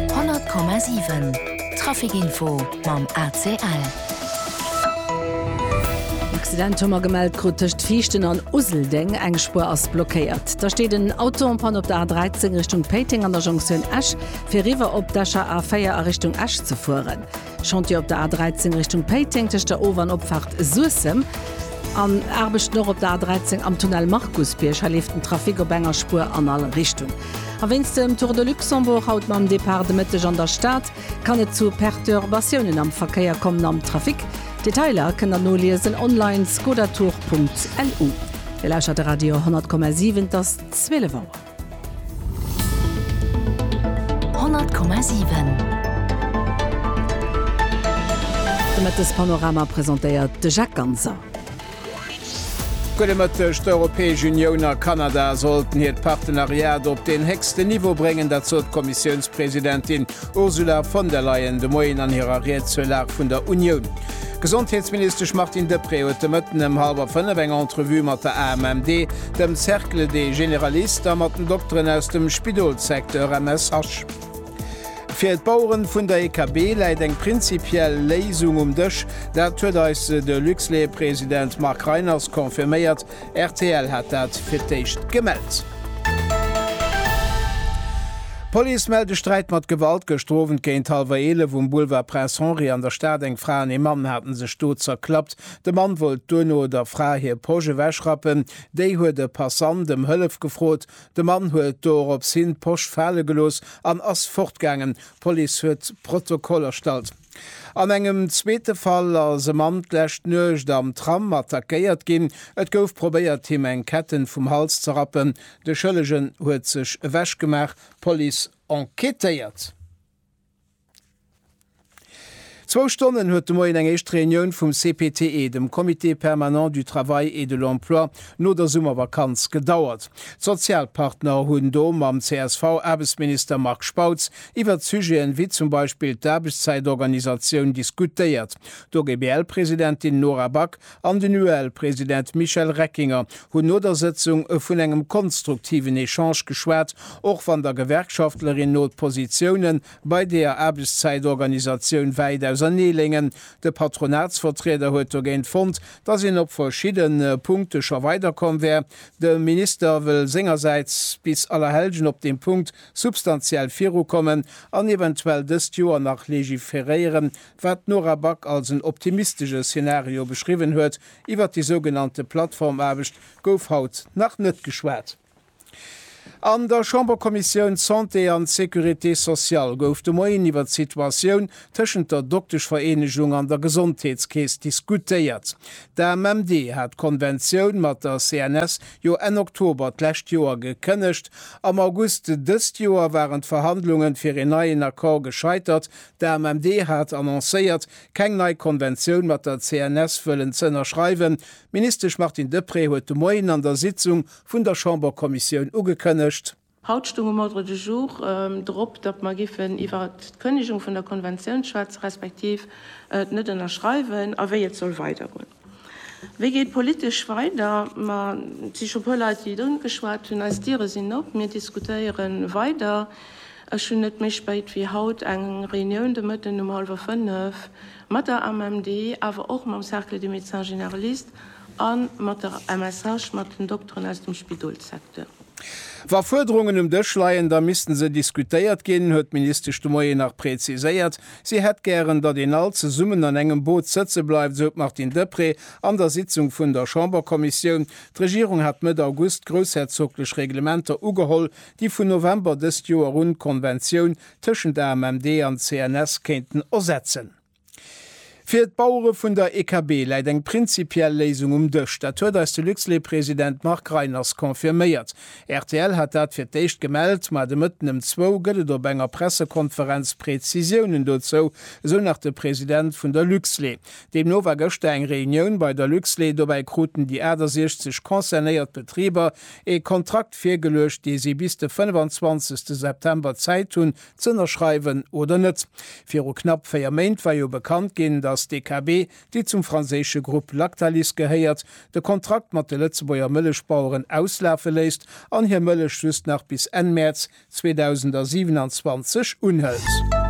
100,7 Traficinfo mam ACL. Accident hu mer gemellt krut tëscht Viichten an Useldeng. Eng Spuer ass blockéiert. Da steet en Auto en Panne op der A13 Richtung Péiteng an der Jonktioun Esch, fir eriwwer op d'Escher A4 a Richtung Esch ze fueren. Chantier op der A13 Richtung Péiteng tëscht der Ower an Opfaart Suessem an Aarbechten och op der A13 am Tunnel Markusbierg. Hei leeft den Trafic op enger Spuer an all Richtung. A wéinst dem Tour de Luxembourg haut mam Depart de Mëtteg an der Stad kann et zu Perturbatiounen am Verkéier kommen am Trafic. Detailer kënnt der noliesen online, skodatour.lu. Dir lauschtert de Radio 100,7, et ass 12 Auer. 100,7 De Mëttespanorama presentéiert de Jacques Ganser. Gudde Mëtteg, D'Europäesch Unioun a Kanada sollten hiert Partenariat op den héchsten Niveau bréngen. Dat sot d'Kommissiounspresidentin Ursula von der Leyen de Moien an hirer Ried zur Lag vun der Unioun. D'Gesondheetsministesch Martine Deprez huet de Mëtten ëm hallwer fënnef eng Entrevue mat der AMMD dem Cercle des Généralistes a mat den Dokteren aus dem Spidolssecteur, MSH. Fir d'Baueren vun der EKB läit eng prinzipiell Léisung um Dësch, dat huet eis de Luxlait-President Marc Reiners confirméiert. Rtl hat dat fir d'éischt gemellt. D'Police mellt e Sträit mat Gewalt. Gëschter Owend géint hallwer 11 um Boulevard Prince Henri an der Stad. Eng Fra an ee Mann hate sech do zerklappt. De Mann wollt duerno der Fra hir Posch ewechrappen. Déi huet e Passant ëm Hëllef gefrot. De Mann huet dorops hin d'Posch fale gelooss an ass fortgaangen. D'Police huet Protokoll erstallt. An engem zweete Fall ass e Mann d'lescht Nuecht am Tram attackéiert ginn. Et gouf probéiert, him eng Ketten vum Hals ze rappen. De Schëllegen huet sech ewechgemaach. D'Police enquêtéiert. Zwou Stonnen huet de Moien eng éischt Reunioun vum CPTE, dem Comité permanent du travail et de l'emploi, no der Summervakanz gedauert. D'Sozialpartner hunn do mam CSV-Aarbechtsminister Marc Spautz iwwert Sujeten wéi zum Beispill d'Aarbechtszäitorganisatioun diskutéiert. D'OGBL-Presidentin Nora Back an den UEL-President Michel Reckinger hunn no der Sëtzung vun engem konstruktiven Echange geschwat, och wann der Gewerkschaftlerin no d'Positioune bei deeër Aarbechtszäitorganisatioun wäit ausernee léngen. De Patronatsvertrieder huet dogéint fonnt, datt een op verschidde Punkte scho weiderkomm wär. De Minister wëll sengersäits bis Allerhellgen op deem Punkt substantiell virukommen an eventuell dëst Joer nach legiferéieren, Wat d'Nora Back als en optimistesche Szenario beschriwwen huet, iwwer déi sougenannte Plattformaarbecht gouf haut nach net geschwat. An der Chamberkommissioun Santé an Sécurité sociale gouf de Moien iwwer d'Situatioun tëschent der Dokteschvereenegung an der Gesondheetskeess diskutéiert. D'AMMD hat d'Konventioun mat der CNS jo Enn Oktober d'lescht Joer gekënnegt. Am August dëst Joer waren d'Verhandlungen fir een neien Accord gescheitert, D'AMMD hat annoncéiert, keng nei Konventioun mat der CNS wëllen ze ënnerschreiwen. D'Ministesch Martine Deprez huet de Moien an der Sitzung vun der Chamberkommissioun ugekënnegt, Haut stoung um Ordre du jour drop, datt mer giffen iwwer d'Kënnegung vun der Konventioun schwätzen, respektiv d'Net-Ënnerschreiwen a wéi et soll weidergoen. Wéi geet politesch weider? Ma et si scho puer Leit, déi et ungeschwat hunn. Eis Diere sinn op, mir diskutéiere weider. Ech hunn net méi spéit wéi haut eng Reunioun de Mëtten um hallwer 5 mat der AMMD, awer och mam Cercle des Médecins Généralistes a mat der MSH, mat den Dokteren aus dem Spidolssecteur. Wa Fuerderungen um Dësch leien, da misste se diskutéiert ginn, huet d'Ministesch de Moien nach preziséiert. Si hätt gären, datt een all zesummen an engem Boot sëtze bleift, esou d'Martine Deprez an der Sitzung vun der Chamberkommissioun. D'Regierung hat Mëtt August d'groussherzoglech Reglementer ugeholl, déi vun November dëst Joer un d'Konventioun tëschent AMMD an CNS kéinten ersetzen. Fir d'Bauere vun der EKB läit eng prinzipiell Léisung um Dësch. Dat huet eis de Luxlait-President Marc Reiners confirméiert. Rtl hat dat fir d'éischt gemellt, ma de Mëtten ëm zwou gëtt et op enger Pressekonferenz Prezisiounen dozou, esou nach de President vun der Luxlait. Deemno war gëschter eng Reunioun bei der Luxlait. Dobäi kruten déi 68 concernéiert Betriber ee Kontrakt virgeluecht, dee si bis de 25. September Zäit hunn, z'ënnerschreiwen oder net. Viru knapp véier Méint war jo bekannt ginn, datt d'DKB, déi zum franséische Grupp Lactalis gehéiert, de Kontrakt mat de Lëtzebuerger Mëllechbaueren auslafe léisst an hir Mëllech just nach bis Enn Mäerz 2027 unhëlt.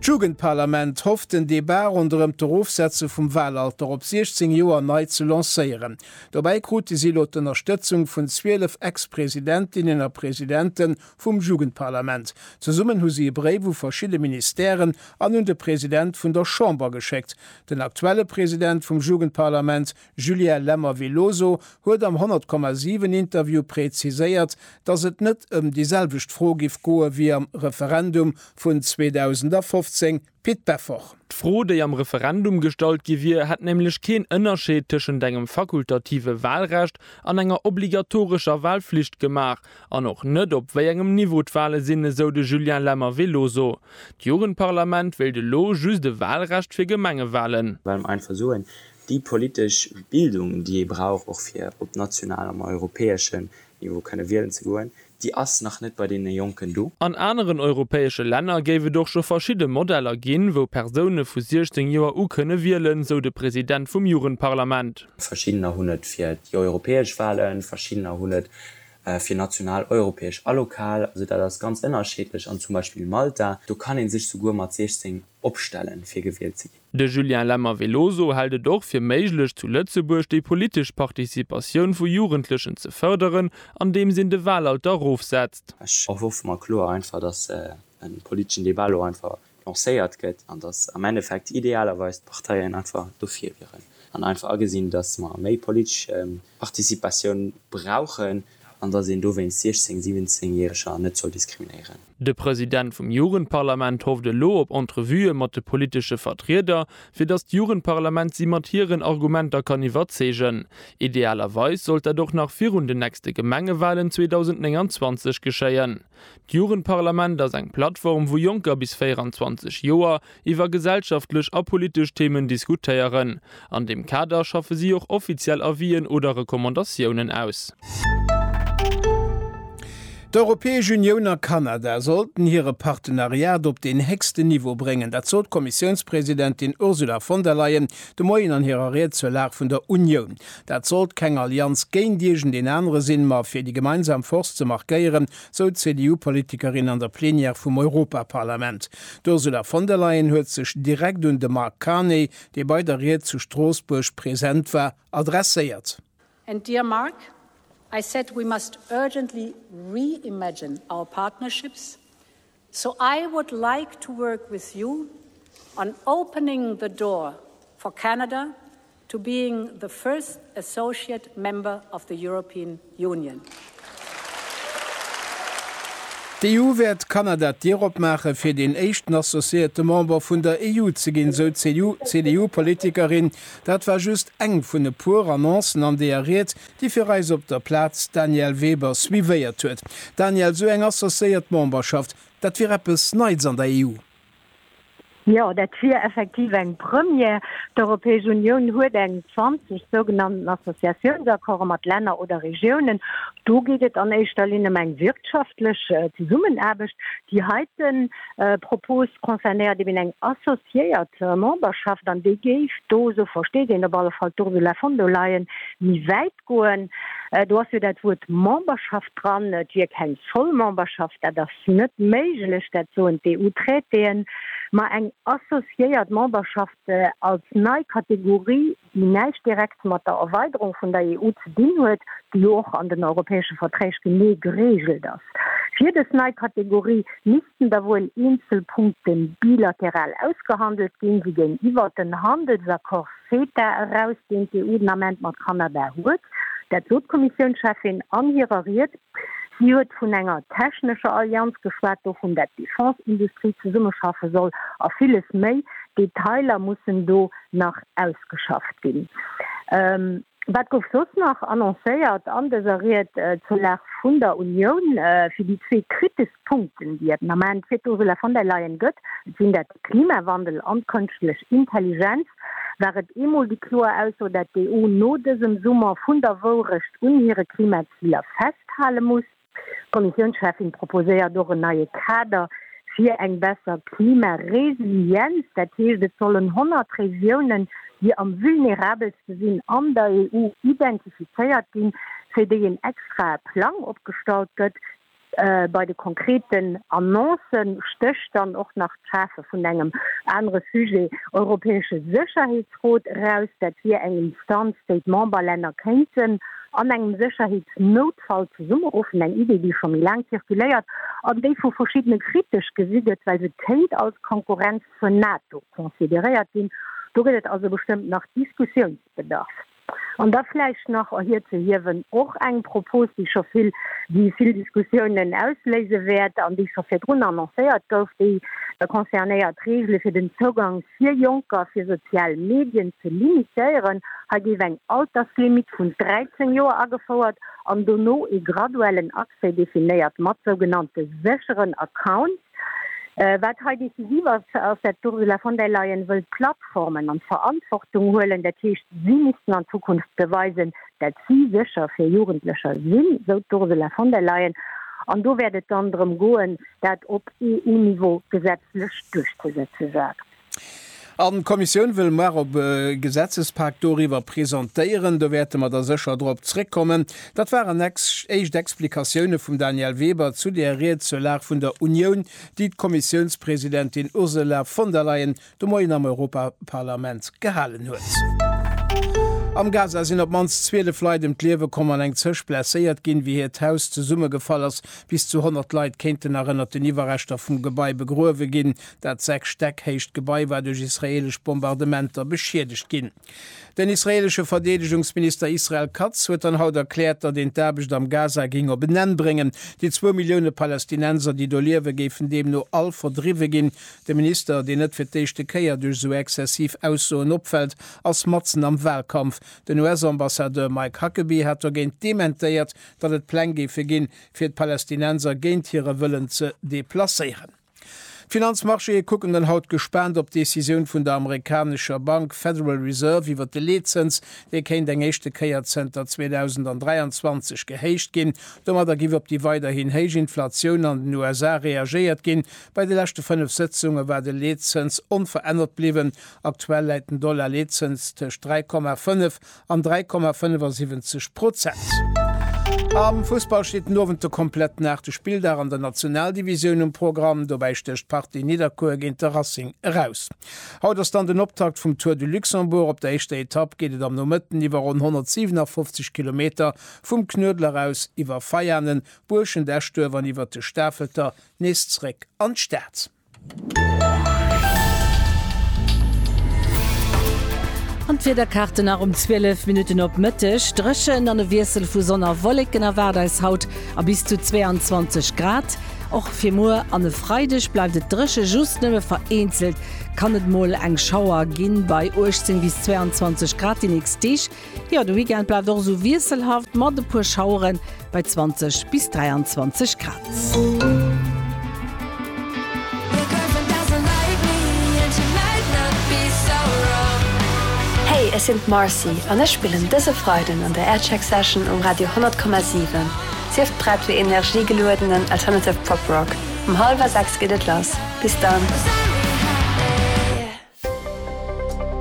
D'Jugendparlament hofft den Debat ronderëm d'Erofsetze vum Wahlalter op 16 Joer nei ze lancéieren. Dobäi krute si elo d'Ënnerstëtzung vun 12 Ex-Presidentinnen a Presidenten vum Jugendparlament. Zesummen hu si e Bréif u verschidde Ministèren an un de President vun der Chamber geschéckt. Den aktuelle President vum Jugendparlament, Julien Lemmer-Veloso, huet am 100,7 Interview präziséiert, datt et net ëm déi selwecht Fro giff goe wéi am Referendum vun 2015, Pit Beffort. D'Fro, déi am Referendum gestallt gi wier, hätt nämlech keen Ënnerscheed tëschent engem fakultative Walrecht an enger obligatorescher Walflicht gemaach an och net, op wéi engem Niveau d'Wale sinn, esou de Julien Lemmer-Veloso. D'Jugendparlament wéilt elo just e Walrecht fir Gemengewalen. Well mer einfach soen, déi politesch Bildung, déi ee brauch och fir op nationalem a europäeschen Niveau kënne wielen ze goen, déi ass nach net bei deene Jonken do. An aneren europäesche Länner géif et och scho verschidde Modeller ginn, wou Persoune vu 16 Joer u kënne wielen, sou de President vum Jugendparlament. Verschiddener hunn et fir déi europäesch Walen, verschiddener hunn et fir national, europäesch a lokal. Also dat ass ganz ënnerscheedlech. An zum Beispill Malta, do kann ee sech souguer mat 16 opstellen, fir gewielt ze ginn. De Julien Lemmer-Veloso hält et och fir méiglech zu Lëtzebuerg déi politesch Participatioun vu Jugendlechen ze fërderen, andeems een de Wahlalter erofsetzt. Ech erhoffe mer kloer einfach, datt e politeschen Debat elo einfach lancéiert gëtt an datt am Endeffekt idealerweis d'Parteien einfach dofir wieren an einfach agesinn, datt mer méi politesch Participatioun brauchen. an datt een dowéinst 16 17 Järeger net soll diskriminéieren. De President vum Jugendparlament hofft elo op Entrevuë mat de politesche Vertrieder, fir datt d'Jugendparlament si mat hiren Argumenter kann iwwerzeegen. Idealerweis sollt dat och nach virun den nächste Gemengewalen 2029 geschéien. D'Jugendparlament ass eng Plattform, wou Jonker bis 24 Joer iwwer gesellschaftlech a politesch Themen diskutéieren. An deem Kader schaffe si och offiziell Avis'en oder Recommandatiounen aus. D'Europäesch Unioun a Kanada sollten hire Partenariat op den héchsten Niveau bréngen. Dat sot d'Kommissiounspresidentin Ursula von der Leyen de Moien an hirer Ried zur Lag vun der Unioun. Dat sollt keng Allianz géint iergend een anere sinn, ma fir déi gemeinsam Force ze markéieren, sou d'CDU-Politikerin an der Plenière vum Europaparlament. D'Ursula von der Leyen huet sech direkt un de Mark Carney, dee bei der Ried zu Stroossbuerg present war, adresséiert. And dear Mark, I said we must urgently re-imagine our partnerships So I would like to work with you on opening the door for Canada to being the first associate member of the European Union. D'EU wäert Kanada d'Dier opmaache fir deen éischten associéierte Member vun der EU ze ginn, sou d'CDU-Politikerin. Dat war just eng vun e puer Annoncen an deeër Ried, déi fir eis op der Plaz d'Danièle Weber suivéiert huet. Danièle, esou eng associéiert Memberschaft, dat wier eppes Neits an der EU? Jo, dat wier effektiv eng Première. D'Europäesch Unioun huet eng 20 sougenannten Associatiounsaccords mat Länner oder Regiounen. Do geet et an éischter Linn ëm eng wirtschaftlech Zesummenaarbecht, déi heiten, Propos concernéiert eben eng associéiert Memberschaft, an déi géif do, esou versteet een op alle Fall d'Ursula von der Leyen, méi wäit goen. Do ass jo dat Wuert Memberschaft dran, et wier keng voll Memberschaft, dat ass net méiglech, dat soen d'EU-Traitéen, ma eng associéiert Memberschaft als nei Kategorie déi näischt direkt mat der Erweiderung vun der EU ze dinn huet, déi jo och an den europäesche Verträg genee gereegelt ass. Fir dës nei Kategorie missten da wuel eenzel Punkte bilateral ausgehandelt ginn, wéi géintiwwer den Handelsaccord CETA eraus, deen d'EU den Ament mat Kanada huet. Dat sot d'Kommissiounscheffin an hirer Ried. Si huet vun enger technescher Allianz geschwat, dovun, dat d'Defense-Industrie zesummeschaffe soll a villes méi. Detailer mussen do. nach ausgeschafft ginn. Wat gouf soss nach annoncéiert an dëser Ried zur Lag vun der Unioun? Fir déi zwee kritesch Punkten, déi et den Ament fir d'Ursula von der Leyen gëtt, et sinn dat de Klimawandel an d'Kënschtlech Intelligenz, war et eemol déi kloer Ausso, dat d'EU no dësem Summer vun der Wourecht un hire Klimaziler festhale muss. D'Kommissiounscheffin proposéiert och en neie Kader fir eng besser Klimaresilienz. Dat heescht, et sollen 100 Regiounen, déi am vulnerabelste sinn, an der EU identifizéiert ginn, fir déi een extrae Plang opgestallt gëtt. Bei de konkreten Annoncë stécht dann och nach d'Schafe vun engem anere Sujet, europäesche Sécherheetsrot, eraus. Dat wier eng Instanz, déi d'Memberlänner kéinten an engem Sécherheetsnoutfall Fall zesummeruffen, eng Idee, déi scho méi laang zirkuléiert an déi vu verschiddene kritesch gesi gëtt, well se kéint als Konkurrenz zur NATO consideréiert ginn. Do gëtt et also bestëmmt nach Diskussiounsbedarf. An da vläicht nach erhirzehiewen, och eng Propos, déi scho vill, déi vill Diskussiounen ausléise wäert an déi scho virdrun annoncéiert gouf, déi concernéiert d'Reegele fir den Zougank Fir Jonker fir sozial Medien ze limitéieren, hei géif eng Alterslimit vun 13 Joer agefouert an dono ee graduellen Accès definéiert mat sougenannte sécheren Accounts. Wat hei decisiv ass, ass dat d'Ursula von der Leyen wëllt d'Plattformen an d'Verantwortung huelen, dat heescht si missten an Zukunft beweisen, Dat si sécher fir Jugendlecher sinn, esou d'Ursula von der Leyen. An do wäert et dann drëm goen, dat op EU-Niveau gesetzlech duerchzesetze sagt. An d'Kommissioun wëll muar op e Gesetzespak doriwwer presentéieren. Do wäerte mer da sécher drop zréckkommen. Dat waren éischt Explikatioune vum Daniel Weber zu där Ried zur Lag vun der Unioun, déi d'Kommissiounspresidentin Ursula von der Leyen de Moien am Europaparlament gehalen huet. Am Gaza sinn op d'mannst 12 Leit ëm d'Liewe komm an eng Zëscht blesséiert ginn, wéi hiert Haus zesummegefall ass. Bis zu 100 Leit kéinten nach ënnert den Iwwerreschter vum Gebai begruewe ginn. Dat 6 Stäck héicht Gebai war duerch israeelesch Bombardementer beschiedegt ginn. Den israeelesche Verdeedegungsminister Israel Katz huet dann haut erkläert, datt een d'Aarbecht am Gaza géing op en Enn bréngen. Déi zwou Millioune Palästinenser, déi do liewen, géifen deemno all verdriwwe ginn. De Minister, deen net fir d'éischte Kéier duerch esou exzessiv Aussoen opfält, ass matzen am Wahlkampf. Den US-Ambassadeur Mike Huckabee hat dogéint dementéiert, datt et Pläng géife ginn, fir d'Palästinenser géint hire Wëllen ze deplacéieren. D'Finanzmarchéë kucken dann haut gespaant op d'Decisioun vun der amerikanescher Bank Federal Reserve iwwer de Leetzëns. Dee kéint eng éischte Kéier zënter 2023 gehéicht ginn. Domadder giff op déi weiderhin héich Inflatioun an den USA reagéiert ginn, Bei de leschte fënnef Sëtzunge war de Leetzëns onverännert bliwwen. Aktuell läit den Dollar-Leetzëns tëscht 3,5 an 3,75 Prozent. Am Fussball steet den Owend de kompletten aachte Spilldag an der Nationaldivisioun um Programm. Dobäi stécht d'Partie Nidderkuer géint de Racing eraus. Haut ass dann den Optakt vum Tour du Luxembourg. Op der éischter Etapp geet et am Nomëtten iwwer ronn 157 Kilometer vum Knuedler aus iwwer Veianen, Buerschent, Eschduerf an iwwert de Stafelter nees zréck an d'Stad. An d'Wiederkarte nach um 12 Minutten op Mëtteg, Dréchent an e Wiessel vu Sonn a Wolleken erwaart eis haut a bis zu 22 Grad. Och fir muer an e Freideg bleift et dréche, just nëmme vereenzelt kann et mol eng Schauer ginn, bei 18 bis 22 Grad déi nächst Deeg. Jo, de Weekend bleift och esou wiesselhaft mat e puer Schauere bei 20 bis 23 Grad. Hey, ech sinn d'Marcy an ech spillen dëse Freiden an der Aircheck Session um Radio 100,7. Sief prett fir energiegeluedenen alternative Pop Rock. Um hallwer 6 geet et lass. Bis dann!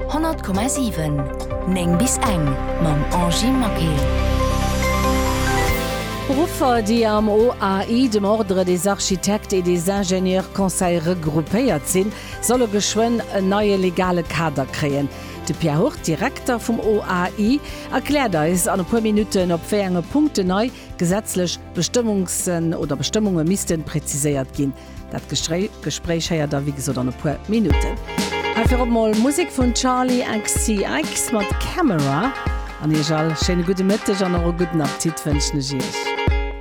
100,7 9 bis eng mam Angie Maquet. Beruffer, déi am OAI, dem Ordre des Architectes et des Ingénieurs Conseils, regroupéiert sinn, solle geschwënn en neie legale Kader kréien. De Pierre Hurt, Direkter vum OAI, erkläert eis an e puer Minutten, op wéi enge Punkten nei gesetzlech Bestëmmungsen oder Bestëmmunge misste präziséiert ginn. Dat Gespréich héiert der wéi gesot an e puer Minutten. Hei virop mol Musek vun Charlie XCX mat Camera. An iech all schéine gudde Mëtteg an och e gudden Appetit wënschen ech iech.